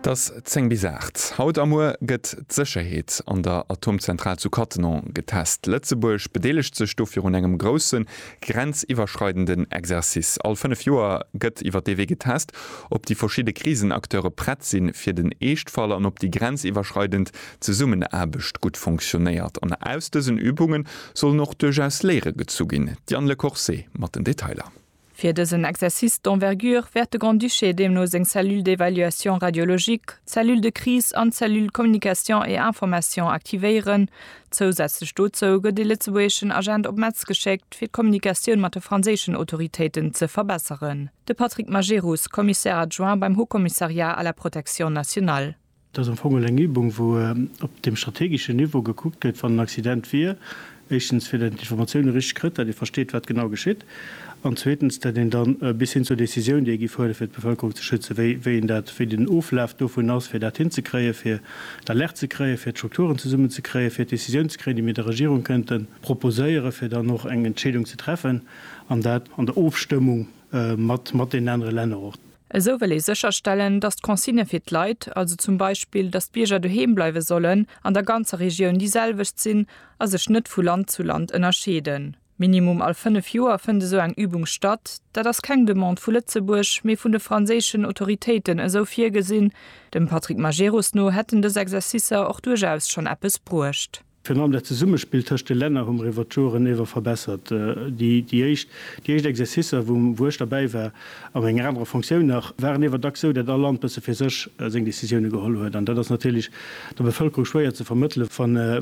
't ass 10 bis 8. Haut a muer gëtt d'Sécherheet an der Atomzentral zu Cattenom getest. Lëtzebuerg bedeelegt sech dofir un engem grousse grenziwwerschreidenden Exercice. All 5 Joer gëtt iwwer dee Wee getest, ob déi verschidde Krisenacteure prett si fir den Eeschtfall an ob déi grenziwwerschreidend Zesummenaarbecht gutt funktionéiert. An aus dësen Übunge sollen och duerchaus Léiere gezu ginn. D'Diane Lecourcé mat den Detailer. Fir dësen Exercice d'envergure wäert de Grand-Duché deemno seng Cellule d'évaluation radiologique, d'Cellule de crise an d'Cellule communication et information aktivéieren. Zousätzlech dozou gëtt ee lëtzebuergeschen Agent op Metz geschéckt, fir d'Kommunikatioun mat de franséischen Autoritéiten ze verbesseren. De Patrick Majerus, Commissaire adjoint beim Haut-Commissariat à la protection nationale. Et ass am Fong elo eng Übung, wou op deem strategeschen Niveau gekuckt gëtt, wann en Accident wier, éischtens, fir datt een d'Informatioune richteg kritt, datt ee versteet, wat genau geschitt, an zweetens, datt een da bis hin zur Décisioun, déi ee giff huelen, fir d'Bevëlkerung ze schützen, wéi een dat, wéi den Oflaf dovun ass, fir dat hinzekréien, fir d'Alerte ze kréien, fir d'Strukturen zesummenzekréien, fir d'Décisioun ze kréien, déi mir der Regierung kënnte proposéieren, fir dann och eng Entscheedung ze treffen, an dat an der Ofstëmmung mat deenen anere Länner och. Esou wëll ee sécherstellen, datt d'Consigne fir d'Leit, also zum Beispill, datt d'Bierger doheem bleiwe sollen, an der ganzer Regioun déi selwecht sinn a sech net vu Land zu Land ënnerscheeden. Minimum all fënnef Joer fënnt esou eng Übung statt. Dat ass keng Demande vu Lëtzebuerg, mee vun de franséischen Autoritéiten esou virgesinn. Dem Patrick Majerus no hätten dës Exercicer och duerchaus schonn eppes bruecht. Virun allem dat Zesummespill tëscht de Länner hu mer iwwert d'Joren ewer verbessert. Déi éischt Exercicer, wou ech derbäi war, a menger anerer Fonctioun nach, waren ewer dacks sou, dat all Land bësse fir sech seng Décisioune geholl huet. An dat ass natierlech der Bevëlkerung schwéier ze vermëttele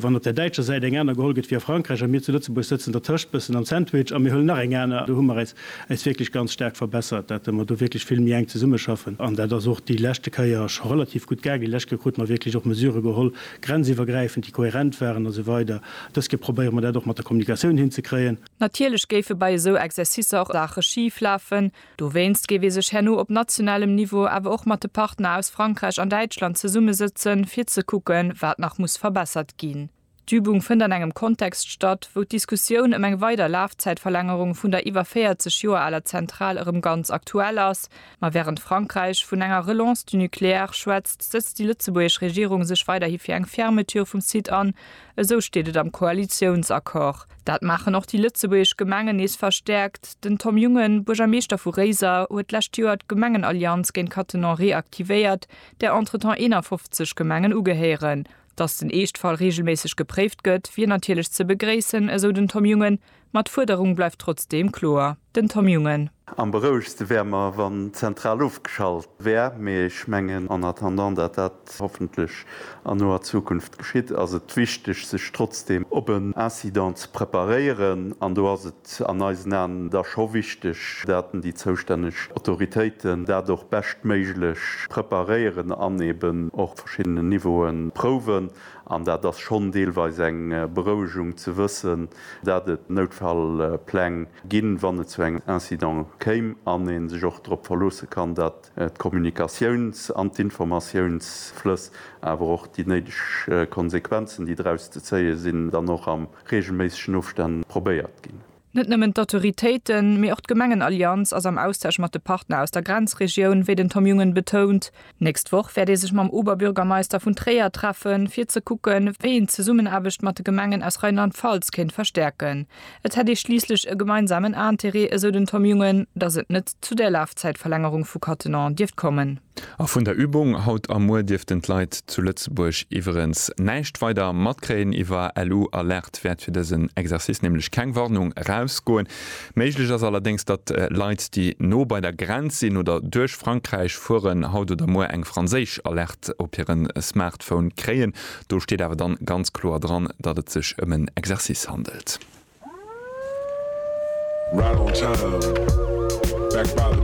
wann op der däitscher Säit eng aner geholl gëtt wéi a Frankräich a mir zu Lëtzebuerg sëtzen dertëscht, bëssen am Sandwich, a mir huelen nach eng aner. Do hu mer äis wierklech ganz staark verbessert, dat mer do wierklech vill méi enk zesummeschaffen. An dat ass och déi leschte Kéier scho relativ gutt gaangen. Déi lescht Kéier krute mer wierklech och Mesurë geholl, grenziwwergräifend, déi kohärent waren a sou weider Dës Kéier probéiere mer dat och mat der Kommunikatioun hinzekréien. Natierlech géife bei esou Exercicer och Saache schif lafen. Dowéinst géif ee sech herno op nationalem Niveau awer och mat de Partner aus Frankräich an Däitschland zesummesëtzen, fir ze kucken, wat nach muss verbessert ginn. D'Übung fënnt an engem Kontext statt, wou d'Diskussioun ëm eng weider Lafzäitverlängerung vun der iwwer 40 Joer aler Zentral erëm ganz aktuell ass Ma wärend Frankräich vun enger Relance du nucléaire schwätzt, sëtzt déi lëtzebuergesch Regierung sech weiderhi fir eng Fermeture vum Site an. Esou steet et am Koalitiounsaccord. Dat maachen och déi lëtzebuergesch Gemengen nees verstäerkt. Den Tom Jungen, Buergermeeschter vu Réiser, huet d'lescht Joer d'Gemengenallianz géint Cattenom reaktivéiert, där entretemps 51 Gemengen ugehéieren. Datt den Eeschtfall reegelméisseg gepréift gëtt, wier natierlech ze begréissen, esou den Tom Jungen, ma d'Fuerderung bleift trotzdeem kloer. Den Tom Jungen. Am berouegste wär mer wann d'Zentral ofgeschalt wär, mee ech mengen en attendant dat dat hoffentlech an noer Zukunft geschitt, ass et wichteg sech trotzdem op en Incident ze preparéieren an do ass et an eisen Aen da scho wichteg daten déi zoustänneg Autoritéiten dat och beschtméiglech preparéieren an eben och op verschiddenen Niveaue prouwen. An dat ass schonn deelweis eng Berouegung ze wëssen, dat et Noutfallpläng ginn, wann et zu engem Incident kéim, an ee sech och drop verloosse kann, dat d'Kommunikatiouns an d'Informatiounsflëss, awer och déi néideg Konsequenzen, déi draus ze zéie sinn, dann och a reegelméissegen Ofstänn probéiert ginn. Net nëmmen d'Autoritéiten, mee och d'Gemengenallianz ass am Austausch mat de Partner aus der Grenzregioun, wéi den Tom Jungen betount. D'nächst Woch wäert ee sech mam Oberbürgermeister vun Tréier treffen, fir ze kucken, wéi een d'Zesummenaarbecht mat de Gemengen aus Rheinland-Pfalz kéint verstäerken. Et hätt ee schliisslech e gemeinsamen Interêt, esou den Tom Jungen, datt et net zu där Lafzäitverlängerung vu Cattenom dierft kommen. A vun der Übung haut a muer dierften d'Leit zu Lëtzebuerg iwwerens näischt weider matkréien. Iwwer LU Alerte wäert fir dësen Exercice nämlech keng Warnung erausgoen. Méiglech ass allerdéngs, datt Leit, déi no bei der Grenz sinn oder duerch Frankräich fueren, haut oder muer eng franséisch Alerte op hire Smartphone kréien. Do steet awer dann ganz kloer dran, datt et sech ëm en Exercice handelt.